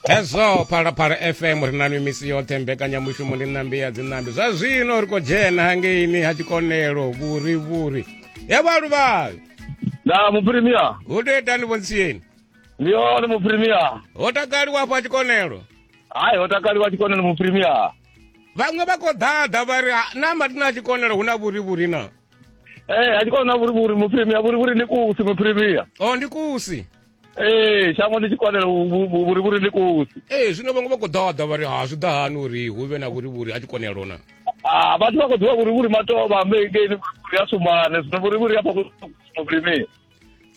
hezwo phalaphala fm ri na nwi misi yoṱhe mbekanyamushumo ndi ṋambi ya dziṋambi zwa zwino ri khou dzhena hangeini ha tshikonelo vhuri vhuri ya vhaluvhali na muprimia hu tea itani vhontsiyeni ndi hone muprimia ho takaliwa afho a tshikonelo hayi ho takaliwa tshikonelo muprimia vhaṅwe vha khou ḓaḓa vha ri "Ah, na matina a tshikonelo hu na vhuri vhuri na ee a tshikona na vhurivhuri muprimia vhurivhuri ndi kusi muprimia o ndi kusi ee shango ndi tshi kwanela vhurivhuri ndi kosi ee zwino vhaṅwe vha khou ḓaḓa vha ri ha zwi ḓa hani uri hu vhe na vhurivhuri a tshi kwanelo na ah, vhathu vha khou ḓivha vhurivhuri matovha ambekeini vhurivhuri a sumane zwino vhurivhuri a fhakusumabulimini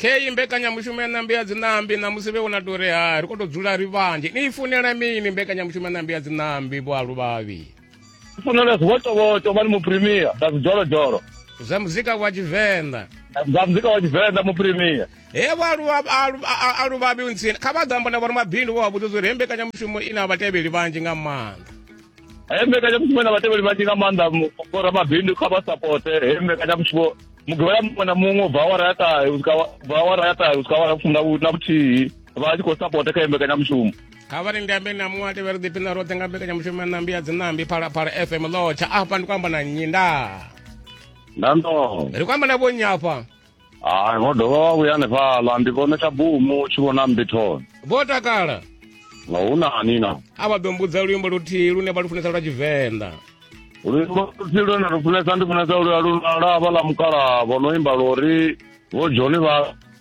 kheyi mbekanyamushumo ya ṋambi ya dziṋambi ṋamusi vhe wona tori ha ri khou tou dzula ri vhanzhi ni i funela mini mbekanyamushumo ya ṋambi ya dziṋambi vhoalu vhavhi funela zwivotovoto vha ni muprimia na zwidzholodolo zwa muzika wa tshivenḓa zwa muzika wa tshivenḓa muprimia he vhaaluvhabi ntsini kha vha ḓo amba na vhori mabindu vho vha vhudza zwo ri he mbekanyamushumo i na vhatevheli vhanzhi nga maanḓa he mbekanyamushumo i na vhatevheli vhanzhi nga maanḓa vhora mabindu kha vha sapote he mbekanyamushumo mugivhela muṅwe na muṅwe ubva awara ya ṱahe ubva awara ya ṱahe usika awara fumi na vhuthihi vha tshi khou sapota kha he mbekanyamushumo kha vha linde ambe na muṅwe a tevhela ḓiphi na roṱhe nga mbekanyamushumo ya ṋambi ya dzinambi phalaphala fm lotsha afha ndi ku amba na nnyi nda nando ri ku amba na vhonnyi afha hayi vho dovha vha vhuya hanefhaḽa ndi vhone tsha bumu tshi vhona mbithoni vho takala nga hu nani na a vha ḓo mbudza luimbo luthihi lune vha lu funesa lwa tshivenḓa luimbo luthihi lune lu funesa ndi funesa luya lunala vha ḽa mukala vho no imba lori vho joni vha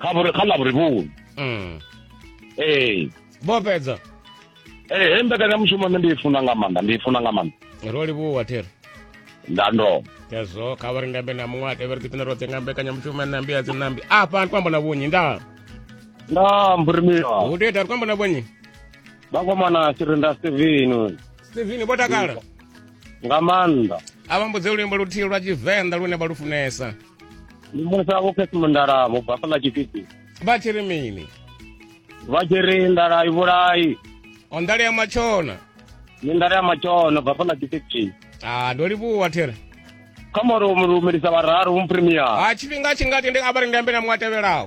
kha vhuri kha ḽavhurivhuni mm. ee vho fhedza ee he mbekanyamushumo nṋe ndi i funa nga maanḓa ndi i funa nga maanḓa ro livhuwa thero ndando yazwo kha vha ri ndambe na muṅwe a tevheri ḓipina roṱhe nga mbekanyamushumo nambi ya dzinambi afha ndi kwamba na vhunyi nda nda mburimiwa hu tea ita ri kwamba na vhunyi vhakomana sirinda steveni steveni vho takala nga maanḓa a vha mbudze luimbo luthihi lwa tshivenḓa lune vha lu funesa ndi mulisa vho khesimo ndala vho bva fhaḽa tshipiti vha tshi ri mini vha tshi ri ndala i vhulai o ndala ya matshona ni ndala ya matshona bva fhaḽa tshipiti a ndo livhuwa there kha moro mu lumelisa vhararu mu premier ha tshifhinga tshi nga tende a vha ri ndi ambe na muṅwe a tevhelaho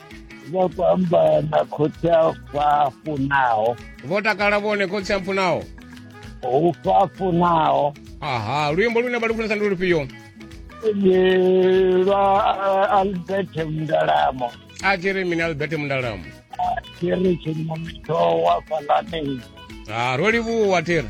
vha khou amba na khotsi a fafunaho vho takala vhone khotsi a mpfunaho u fafunaho aha luimbo lune vha lufunesa ndi lufhio lwa albert mndalamo a tshi ri mini albert mndalamo a tshi ri tshinomito wa falanei ha ro livhuwa thira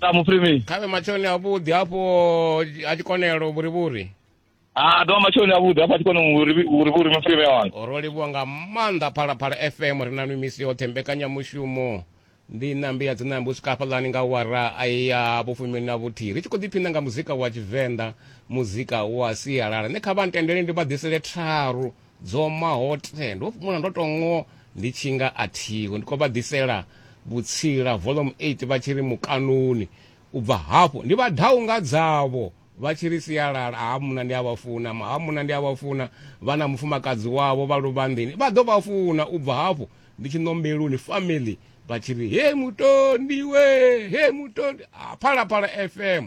sa muprimisi khavhe matshoni avhuḓi hafho a tshikonelo vhurivhuri a ah, dovha matshoni avhuḓi hafho a tshikone vhurivhuri muprimisi wanga ro livhuwa nga maanḓa phalaphala fm ri na nwi misi yoṱhe mbekanyamushumo ndi nambi ya dzinambi u swika hafhaḽani nga wara a ya vhufumi na vhuthihi ri tshi khou ḓiphina nga muzika wa tshivenḓa muzika wa sialala ne kha vha ntendele ndi vha ḓisele tharu Dzoma hoṱhe ndo fhumula ndo tou ngo ndi tshi nga a thiho ndi khou vha ḓisela vhutsila Volume 8 vha tshi ri mukanoni u bva hafho ndi vha dau nga dzavho vha tshi ri sialala ha munna ndi a vha funa ma ha munna ndi a vha funa vha na mufumakadzi wavho vha luvhanḓeni vha ḓo vha funa u bva hafho ndi tshi ṋombeloni family vha tshi ri he mutondi we he mutondi ha phalaphala fm